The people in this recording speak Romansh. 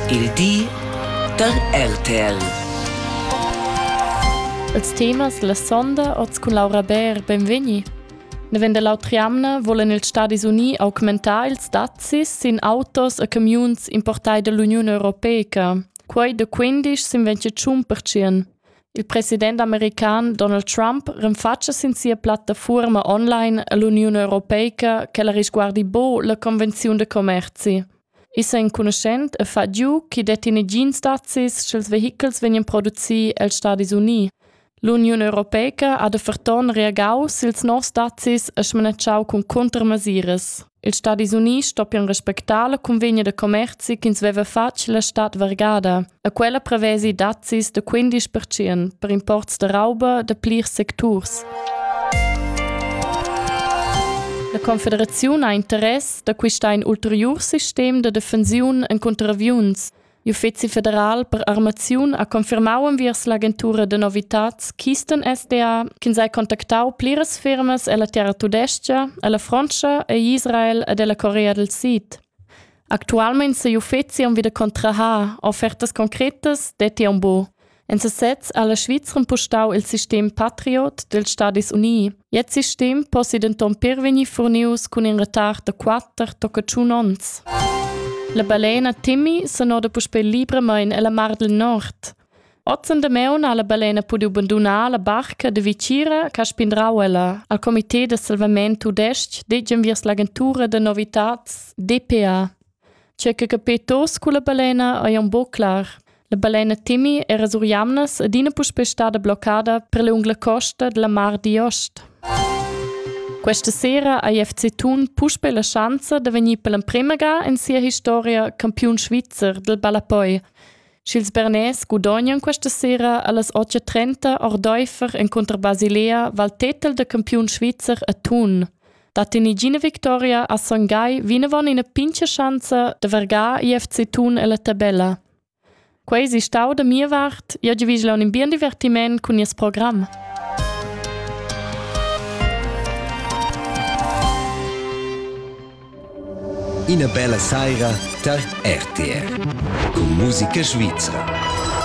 Il di da RTL. Els temas la sonda oz cun Laura Bär, benvegni. Nevend l'autriamna volen ils Stadis Unii augmentar ils dazis sin autos e camiuns importai dall'Uniun Europeica. Quei de 15 sin 25%. Il president american Donald Trump renfatscha sin sia plattafuorma online l'Uniun europeica che la risguardi bo la convenziun de commerci. Issa enconuschent e fa giu chi detti negins dazis sch'ils vehichels vegnan produci els Stadis Uniti. L'Uniun europeica ha de ferton reagau sils nos dazis e smanatschau cun contrmesures. Ils Stadis Units stoppian respectar la cunvegna da commerzi ch'ins veva fatg la stad vargada, e quella prevesi dazis da 15% per imports da rauba da plirs secturs. La Confederaziun ha interess da quistà in ulteriur sistem da defensiun en contraviuns. L'Uffizi federal per armaziun ha confirmau enviers l'agentura de novitads Kisten SDA ch'ins ha contactau pliras firmas ella terra tudestga, ella Frontscha e Israel ed ella Corea del Sid. Actualmein sei l'uffizi aunc wieder contrahar offertas concretas detti aunc buc. En sesez ha la Svizra impustau il sistem patriot dels Stadis Unii. Jetzt sistem possi denton per vegnir furnius cun in retard da quatter tocca tschun onns. La balena Timmy se noda puspei libramain ella mar del Nord. Ozen de Meun ha la balena pudiu bandunar la barca de Vicira che spindrau ella. Al comité de salvament tudesc degen viers l'agentura de novitats DPA. Tgei che capei tuts culla balena ei aunc buc clar. La balena Timmy era sur jamnas adina puspei stada bloccada per lunga la costa dalla Mar d'Ost. Questa sera ha FC Thun puspei la schanza da vegnir per l'emprema ga in sia historia campiun svizzer del ballapoi. Sch'ils bernais gudognan questa sera allas 8.30 ordaifer in contra Basilea Val tetel da campiun svizzer a Thun. Da tenigina victoria a Son Gai vinavon ina pincha schanza da vergar IFC Thun ella tabella. Quei si stau da mia vart, io giovigla un bien divertiment cun nies program. Ina bella saira tar RTR. Con musica svizra.